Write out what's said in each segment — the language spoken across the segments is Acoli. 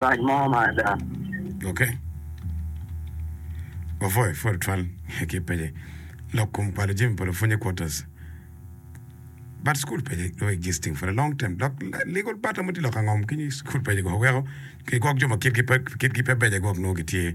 Rac mo ma ada. Ok. Wapwoyo pud tutwal ki pece lok kom kwalo jami pa lupwony i quarters. But school pece dong existing for a long term dok legal battle mo tye lok angom ki school pece go weko ki gwok jo ma kitgi pe kitgi pe beco gwok nongo gitye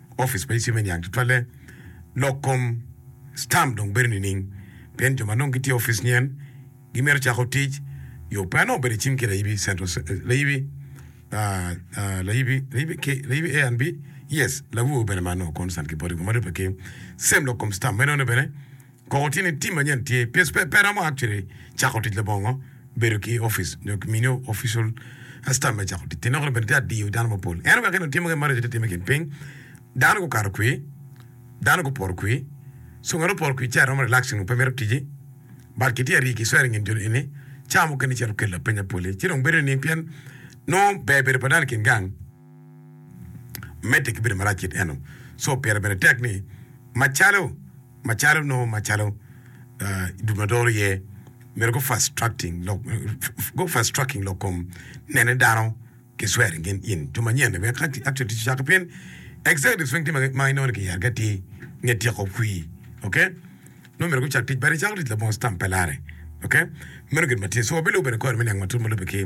Opic ma icime niang tutwalle lok kom stamp dong bedo nining pien jo ma nongo gitye opic nyen gimito cako tic yo pe anongo bedo icim ki layibi central layibi layibi A and B yes lawowo bene ma nongo concern ki boti kome dong pe ki same lok kom stamp meno ne bene Kong wati ni tim manyen tye pes pe pe romo actually cako tic labongo bedo ki office nyo ki miniyo official stamp me cako tic. Ti lok ni bene tye adiyo dano mapol. En wek eno timo ke marico te time kin piny. Dano gu kato kwi. Dano gu poro kwi. So ngat oporo kwi ce aromo relax nyo pe mito tiji. But ki tye ari ki swer ingin joni eni ca mukene cito kelo lapeny apoli. Ci dong bedo nining pien nongo ber bedo pa dano ikin gang medde ki bedo marac kit eno. So pire bene tek ni macalo. macalo nongo macalo dul ma doro iye mito go fast tracking lok go fast tracking lok kom nene dano ki swearing in in to manyen ni wek ka actually tic ocako pien executive swing tye ma inongo ni kiyero ki atir nge tyeko kwir ok nongo myero gucak tic but icako tic labongo stamp pe lare ok meno gin ma tye so wabilubo bene kore me niang matut ma lube ki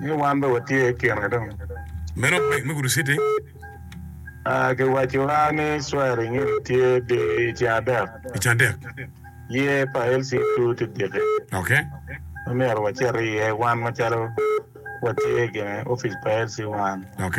Ni wan dong watye i kine dong. Meno bek me gudo citi. Aa, kiwaco a ni swearing in tye di i ceng adek. I ceng adek. Yee pa LCQ ti diki. Ok. Ma myero wacit iye wan macalo watye i kine office pa LC one. Ok.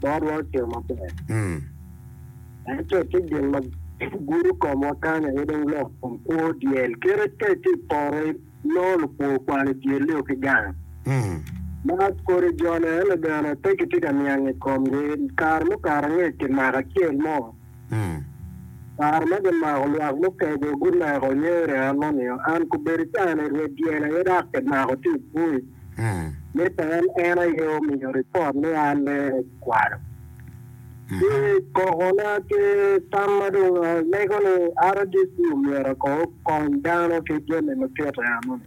Botwa ocito maber, ento tye gin ma gudo komwa kany aye dong lok kom kwo dyel. Kite ka itye i poto inongo lupwo okwalo dyelli-o ki gang ma kodi jone-ni bene pe kitye ka niang i komgi. Kare mukato angec kimako acel mo. Kare ma gimako lwak mutego, guneko nyere an ma nio an kubedo ca ni rwed dyel aye dok kimako tye i bui ni pe en en aye omiyo ripot ni an ni kwalo ki koko na ki tam ma dong alego ni RDC omyero ko okony dano ki jami ma tito eno ni.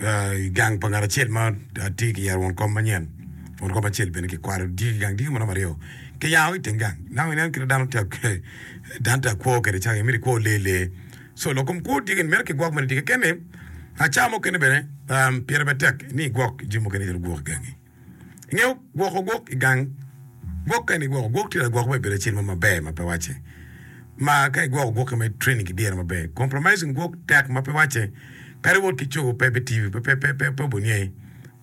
I gang pa ngat acel ma atye ki yero won kom manyen, won kom acel bene ki kwalo diki gang diki ma romo aryo ki yango ki teng gang. Nang inen kit ma dano tye dano tye akwo kede caka imito ikwo lee lee. So lok kom kwo diki ni mito ki gwok mene diki kene. Aca mukene bene pire bene tek ni igwok jami mukene itwero gwoko igangi. Nge gwoko gwok i gang. Gwok kene igwoko gwok tye lagwok bene bedo acel mo maber ma pe wacce. Ma ka igwoko gwokke ma training ki dyere maber, compromising gwok tek ma pe wacce. Kadi wot ki cogo pe bitiyo, pe pe pe pe obonye.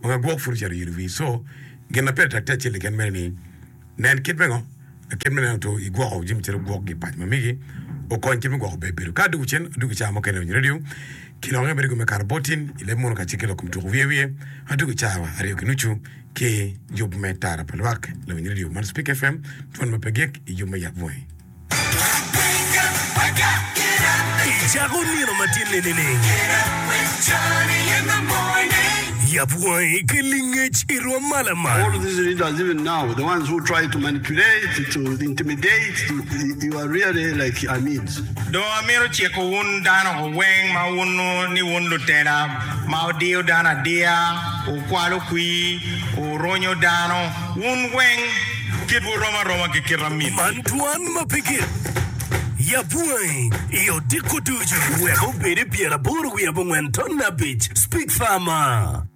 Wanga gwok pud ocito yitowi. So gin ma pire tek tye acel keken mene ni. Nen kit me ngo? Kit me neno two i gwoko jami calo gwok gi paco ma migi okony kit me gwoko ber bedo. Ka adwogo cen, adwogo i caa mo kene onyo radio ki lok nge me rigo me karabotin i leb muno kacel ki lok kom tuku wiye wiye. Adwogo i caa wa aryo ki nucu ki yub me tara pa lwak, lawiny radio man Spik FM, twon ma pe gik i yub me yap bunge. I cako nino matinni nining? Yab wangi ki lingec i rwom mala man. All these leaders, even now, the ones who try to manipulate, to intimidate, you, you are really like Amids. Dong amito ciko wun dano weng ma wuno ni wun lutela ma wudiyo dano adiya, wukwalo kwir, wuronyo dano. Wun weng kitwu rom aroma ki kit amitwu. Man twan ma pe gik. Yab bwangi i odiko ducu. Wek obed i pyeraboro wiye abongwen ton abic. Speak Farmer.